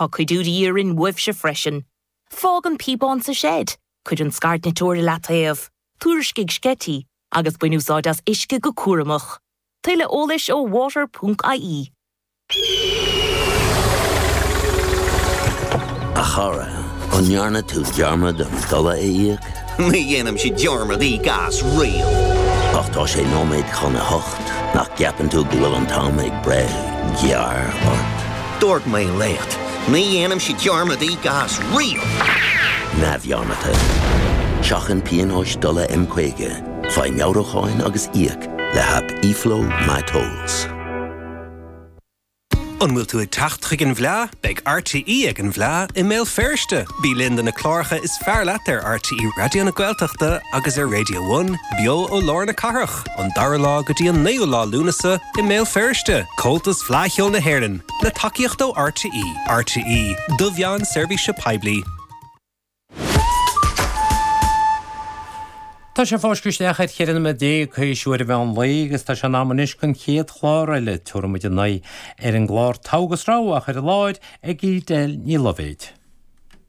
Tá cuidiú de dhíth orainn uaibhse freisin. Fág an píobán sa seid, cuir an scairdniteoir i leataobh, tuairiscigh sceití, agus bain úsáid as uisce go cúramach. Tuilleadh eolais ó water ponc ie. A chara, an ndearna tú dearmad an dola a íoc? Ní dhéanaimse dearmad íoc as riamh! Ach tá sé nóiméad chun a hocht, nach gceapann tú go bhfuil an t-am ag breith gearr ort? Dúirt mé leat, ní dhéanaimse dearmad íoc as riamh! neamhdhearmadta. Seachain pionóis dola M50, faigh meabhrúcháin agus íoc le haip eFlow My Tolls. An bhfuil tú ag teacht chuig an bhFleá? Beidh RTÉ ag an bhFleá i mBéal Feirste! Bí linn do na cláracha is fearr leat ar RTÉ Raidió na Gaeltachta agus ar Radio One, beo ó lár na cathrach. an dara lá go dtí an naoú lá Lúnasa i mBéal Feirste, Comhaltas Fleadh Cheoil na hÉireann, le tacaíocht ó RTÉ. RTÉ, do mheáin seirbhíse poiblí. Tá sé ag fáisceadh isteach ar cheithre nóiméad déag théis uair an mheán lae agus tá sé in am anois don chéad chlár eile, Tabharfaidh muid a n-aghaidh ar an gclár Togha agus Rogha, á chur i láthair ag Edel Ní Loibhéid.